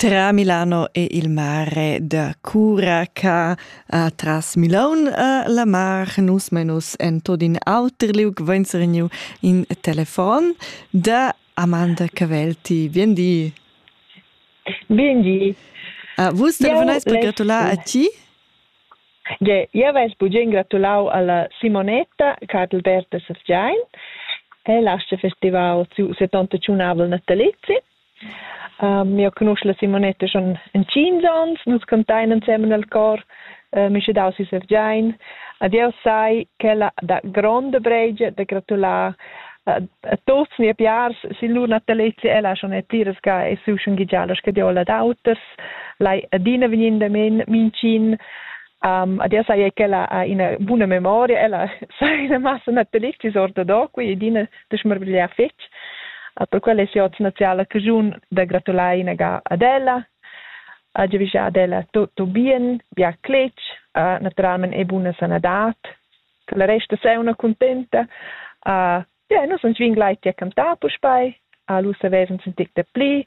Tra Milano e il mare da Curaca a tras Milaun a la mar nus menus en tot in auter liug venzergniu in telefon da Amanda Cavelti. Bien di. Bien di. Uh, vus telefonais per gratular a ti? Ge, io vais bugen gratulau alla Simonetta Cadalberta Safgiain. E lascia festival su 71 navel natalizzi. Uh, mio conosce la Simonetta schon in tschient ans, nus cantain ensemen al cor, uh, mi sche dau si sevgiain. Ad io sai quella da gronda breigia da gratular uh, a tots ni piars si lur natalezia ella schon e pliras ga e su schon gigialas che diola d'auters, lai adina vegnin da men mincin, Um, ad io sai che ella ha una buona memoria, ella sa una massa natalista ortodoxa e dina da schmarvegliar fetg. Per quella è oz naziala caschun da gratular inaga ad ella, ha giavischà ad ella tutto bien, bia cletg, naturalment e buna sanadad, che la resta sei una contenta. Uh, yeah, nus ans vin glai ti a cantar puspei, a lu savesans un tic da pli,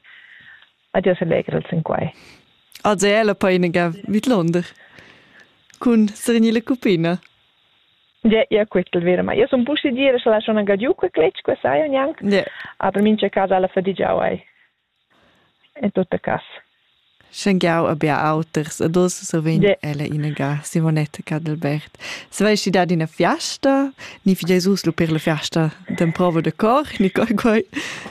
ad io selegral sin quai. Ad è la painega vidlonder cun Srinile Cupina. Ja, ja quittel vera, ma io sun pussi dire scha la schon agadiu que cletsch, que sai o nianc, yeah. aber mincha casa alla fadigiau ei. In tutta cas. Schengiau a bia auters, a dos sovin yeah. ella inega Simonetta Cadelbert. Se vesti dad ina fiasta, ni fi Jesus lu per la fiasta den provo de cor, ni coi coi.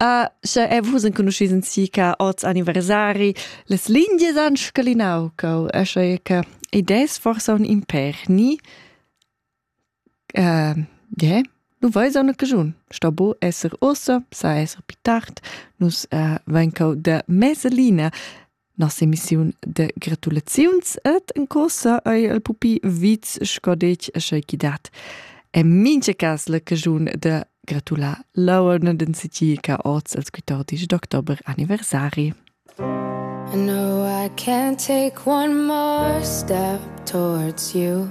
Ah, sche e vus enconuschis in si ca oz anniversari, les lingies han scalinau cau, e sche che idees forsa un imper, ni? Uh, yeah. Nu vais a cagiun. Sto bo esser ossa, sa esser pi tard. Nus uh, ven cau de meselina. Nossa emissiun de gratulaziuns et en cosa ei el pupi viz scodec e schei chi dat. E mincha cas la cagiun de gratular lauern den sitiica oz als 14 d'october anniversari. I know I can't take one more step towards you